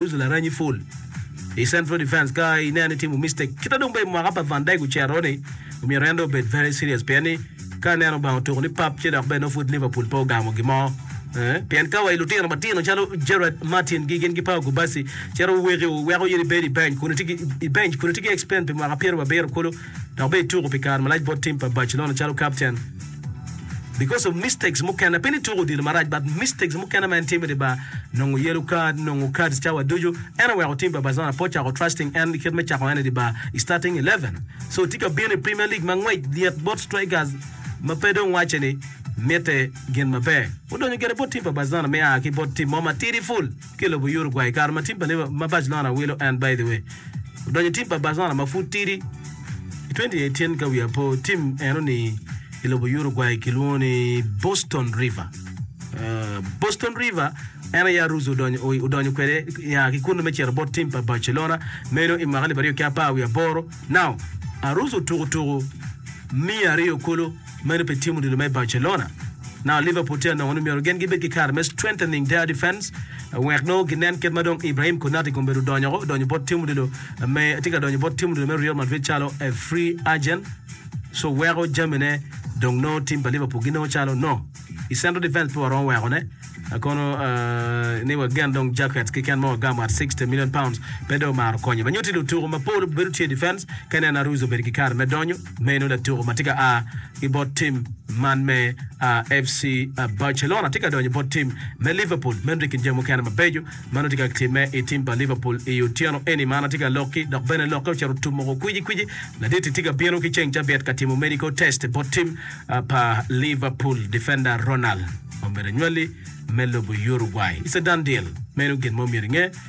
Uso laranyi full i central defence ka ineno ni timo mistake. Kita dong bene mwaka pa Van Dijk ocero ni omyero en dong obed very serious pien ni ka aneno Lubanga otuko ni pap ci dok bene nongo pud Liverpool pe ogamo gimo. Eh, pien ka wa i lutino matino calo Gerard Martin gi gin ki Pau Gubasi cito woweki weko in ibed i bench kun itye ki i bench kun itye ki explain pi mwaka pyerababiro kulu dok bene ituko pi kare malac bot tim pa Barcelona calo captain. because of mistakes mukene pe ni tuko odilo marac but mistakes mukene ma en timo idi bar nongo yellow card nongo cards cawa ducu en oweko team pa Barcelona pe ocako trusting en kit me cako en idi bar i starting eleven so tye ka bino i premier league ma ngwec lyet bot strikers ma pe dong wace ni mitte gin maber. Odonyo gire bot team pa Barcelona me a ki bot team mo matidi full. ki lobo Uruguay i kare ma tim pa Liverpool ma Barcelona wilo en by the way odonyo tim pa Barcelona ma pud tidi i 2018 ka wiya po tim eno ni i lobo Uruguay kilwongo ni Boston River uh, Boston River en aye Aruz odonyo, o- odonyo kwede ya ki kunnu me cito bot tim pa Barcelona meno i mwaka alip aryo ki apar wiye aboro now Aruz otuko tuko miya aryo kulu Meno pe timo dilo me Barcelona. Now Liverpool tye anongo ni myero gin gibed ki kare me strengthening their defence wek nongo ginen kit ma dong Ibrahim Konate komedo donyo woko donyo bot timo dilo me tye ka donyo bot timo dilo me Real Madrid calo a free agent so weko jamine dong nongo team pa Liverpool ginongo calo no i central defence pe waromo weko ne kono ni wagen dong Jaquets keken ma wagamo at sixty million pounds pe dong omaro konyo ma nyutti lutuku mapol bedo tye i defence ka ineno Aruiz obedo ki kare me donyo Meno latuku ma tye ka a ki bot tim man me FC Barcelona tye ka donyo bot tim me Liverpool. Meno tye i kin jami mukene mabeco ma nongo tye ka timme i tim pa Liverpool i otyeno eni. Mar-na tye ka lokki dok bene lokke ocito tummuku kwici kwici. Laditi tye ka bino ki ceng cabiet ka timo medical test bot tim pa Liverpool defender Ronald omyero anywali me lobo Uruguay. It's a done deal. Meno gin ma omyero inge.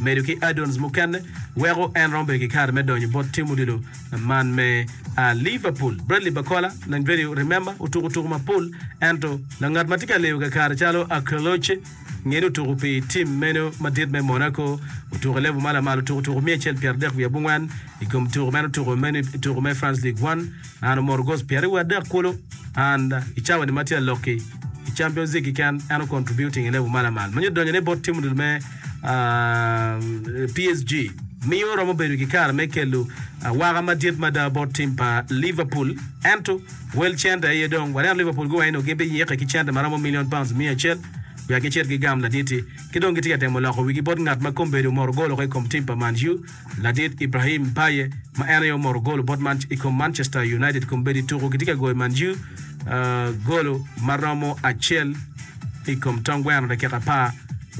medo ki add-ons mukene weko en romo bedo kikare me donyo bot tim odilo man me Liverpool. Bradley Barcola, lang vedio Remember, otuko tuku mapol ento langat matye ka leyo kakare calo Akerloche ngeni otuku pi tim meno madit me Monaco, otuko i level ma lamal otuko tuku miya acel pyera dek wiye abongwen ikom tuku ma en otuko meno ituku me France League One. An omoto goals pyeraryo wiye adek kulu and i cawa ni ma tye alokki i Champions League keken en o contributing i level malamal manyo donyo ne bot team me PSG miyo romo bedo ki kare me kelu waka madit mada bot team pa Liverpool ento wel cente aye dong waneno Liverpool guwaco nio gin bi yike ki cente ma romo million pounds miya acel wek gicit gigam laditi ki dong gitye ka temo loko wigi bot ngat ma kombedo omoto goal oko i kom team pa Man U. Ladit Ibrahim Baye ma en aye omoro gol bot man i kom Manchester United kombeddi tuku gitye ka goyo Man U golo ma romo acel i kom tong gweno dakika apar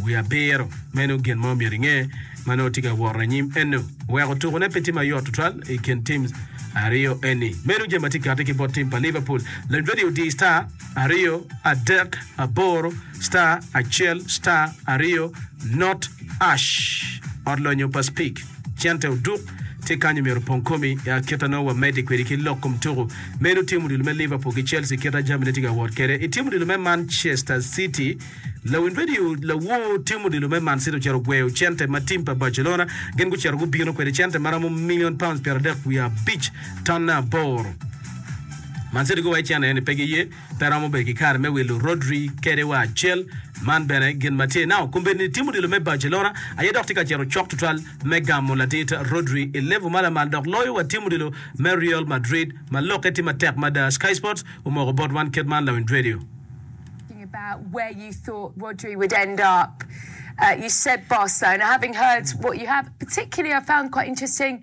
wiye abiro. Meno gin ma omyero inge ma nongo tye ka woro anyim eno. Weko tukune pe tye ma yot tutwal i kin tim aryo eni. Meno jami ma tye kati ki bot tim pa Liverpool. Lanyodi odiyi star aryo, adek, aboro. Star acel star aryo not ash ot lonyo pa speak cente oduk tye kany omyero opong komi i akita nongo wa medi kwedi ki lok kom tuku meno tim odilo me Liverpool ki Chelsea kita jami ne tye ka wot kede i tim odilo me Manchester city lawiny radio lawor tim odilo me man city ocito gweyo cente ma tim pa Barcelona gin gucito gubino kwede cente maromo million pounds pyera dek wiye abic tonne aboro Man City guwaco cene ni pe giye Pe romo bedo ki kare me wilo Rodri kede wa cal. Man bene gin ma tye nao. Kombeddi ni tim odilo me Barcelona aye dok tye ka cito cok tutwal me gamo ladit Rodri i level ma lamal dok loyo wa tim odilo me Real Madrid ma lokke tye matek mada. Sky Sports omoko bot wan kit man lawinj radio. Talking about where you thought Rodri would end up, you said Barcelona, having heard what you have, particularly I found quite interesting.